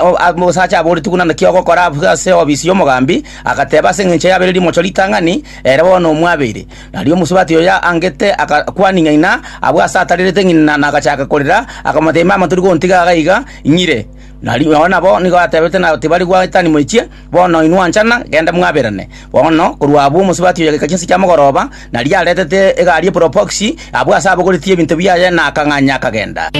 Omosacha aboretigwe nande ki ogokora abwo ase eofisi y'omogambi, agateba ase engencho yabeire rimocho ritang'ani, ere bono omwabeire. Nario omosubati oyo angete agakwania ng'ina abwo aase atarerete ng'ina na agachaka korera, akamotebia, Mama, tori gontiga iga iga inyire. Nario nabo nigo atebete na tibari goetania moichie. Bono inwe onchana, genda mwaberane. Bono korwa abwo omosubati oyogika chinsa chia mogoroba, na riria aretete egari e proboxi, abwo ase abogoretie ebinto biaye na akang'anya akagenda.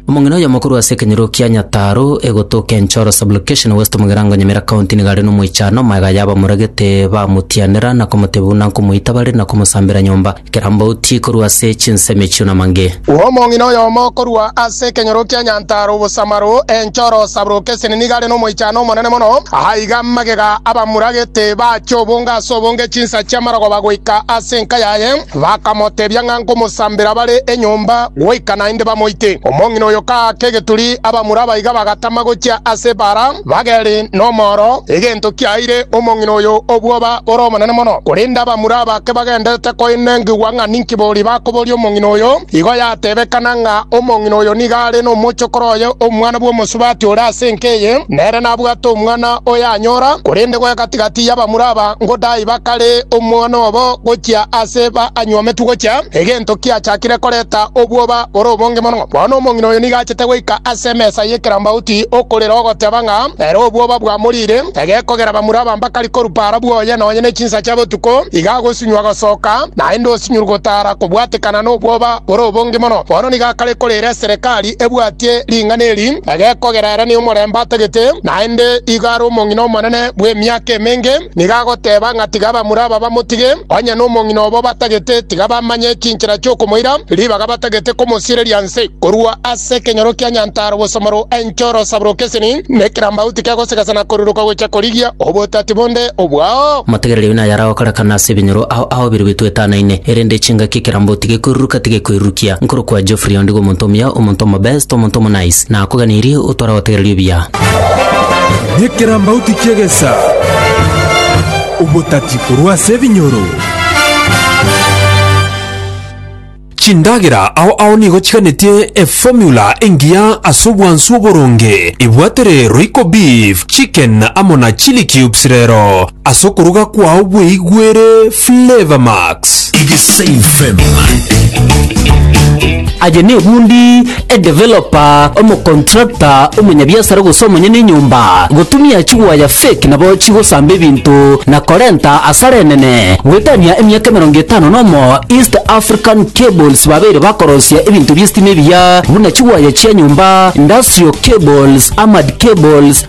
Omong'ina oyomokuru ase ekenyoro kia Nyataro egotoka Enchoro Sub-Location West Mugirango Nyamira County nigo are nomoichano, magega y'abamoragete bamotianera na komotebia buna nkomoita bare na komosambera nyomba. Kera mbauti korwa ase chinsemo echio namange. Omong'ina oyomo korwa ase ekenyoro kia Nyantaro Obosamaro, Enchoro Sabrokeseni nigo are nomoichano omonene mono. Aa iga magega abamuragete bachia obonge ase obonge chinsa chi'amarogoba goika ase enka yaye, bakamotebia ng'a nkomosambera bare enyomba goika naende bamoite. Omong'ina oyo kaaka egeturi, abamura abaiga bagatama gochia ase ebaara. Bageri nomoro, egento kiaeire omong'ina oyo obwoba bore obonene mono. Korende abamura bake bagendete koinengigwa ng'a ninki boria bakoboria omong'ina oyo, igo yatebekana ng'a omong'ina oyo nigo are nomochokoro oye omwana bw'omosubati ore ase enka eye, nere nabwate omwana oyanyora. Korende goe gati-gati y'abamura aba ngodai bakare omwana obo gochia ase baanywometwe gochia, egento kiachakire koreta obwoba bore obonge mono. Bono omong'ina oyo nigo achete goika ase emesa y'ekerambauti okorera ogoteba ng'a ere obwoba bwamoriire, egekogera bamura abambakari korwa para bwoye nonye ne chinsa chia botuko, iga agosinywa gosoka, naende osinyuru gotara kobwatekana n'obwoba bore obonge mono. Bono nigo akare korera eserekari ebwatie ring'ana eri, egekogera ere ne omorembe atagete, naende igo are omong'ina omonene bw'emiaka emenge. Nigo agoteba ng'a tiga abamura aba bamotige, onye nomong'ina obo batagete, tiga bamanye chinchera chi'okomoira, ribaga batagete komosiereria nse. Korwa ase ekenyoro kia Nyantaro bosomoro enchoro saburoka eseni, na ekerambagu tikegosegasa na koruruka gocha korigia obotati bonde obwao. Amategerero aino naye aragokorekana ase ebinyoro ao ao birugitwe etanaine, erende echingaki ekerambagu tigekoiruruka, tigekoirurukia. Nkorokwa Geoffrey onde iga omonto omuya, omonto omobest, omonto omonice, na akoganirie, otware gotegereri obuya. Nekerambauti ki'egesa, obotati korwa ase ebinyoro. Chindagera ao ao nigo chiganetie eformula engiya ase obwansu oboronge. Ebwate rero iko beef, chicken amo na chilli cubes rero. ase okoruga kwao bweigwere Flavour Max. Aye nebundi, edeveloper, omocontractor, omonyabiasara gose omonyene enyomba, gotumia chigwaya fake nabo chigosamba ebinto na korenta asara enene. Goetania emiaka emerongo etano nomo, East African Cables babeire bakorosia ebinto bi'estima ebiya buna chigwaya chia nyomba, industrial cables, armored cables,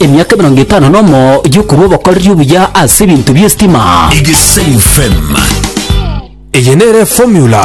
Emiaka emerongo etano nomo y'okorua obokoreri obuya ase ebinto bi'esitima. Igesaim FM. Eye nere formula